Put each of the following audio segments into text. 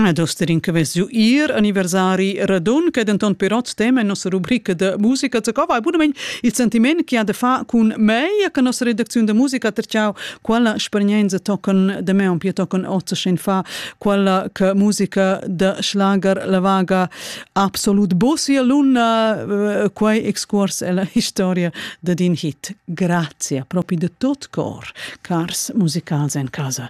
Ed osterin che vess giu ir anniversari radun, che denton pirot tema en nossa rubrica da musica. Co vai bunament il sentiment che ha da fa cun mei, che nossa redacziun da musica terciau quella spernenza tocan da me un pia tocan ozzaschen fa quella che musica da schlager la vaga absolut bosia luna eh, quei excurs ella historia da din hit. Grazie proprio de tot cor, cars musicals en casa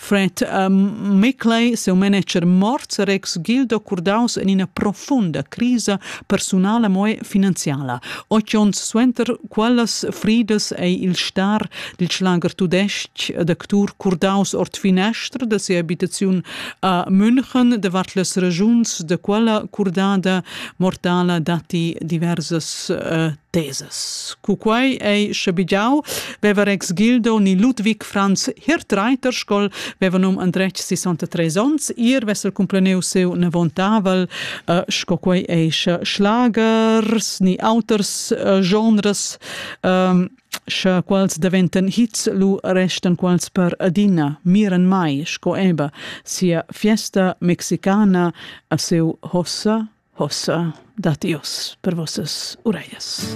Fred uh, Mickley, seu manager morts, er ex-gildo curdaus en ina profunda crisa personala moe finanziala. Ocht ons suenter quellas fridas ei il star dil schlager tudesc d'actur curdaus ord finestr da sia abitaziun a München, de vart las regiuns de quella curdada mortala datti diversas uh, teses. Cu quai ei schabigiau, veva Rex Gildo ni Ludwig Franz Hirtreiter scol veva num andretg 63 onns ir vesel cumpleneu seu nevontavel uh, sco quei ei schlagers ni auters uh, genres um, sche quals deventen hits lu restan quals per adina miren mai sco eba sia fiesta mexicana a seu hossa Hossa dat Dios per vossas ureglias.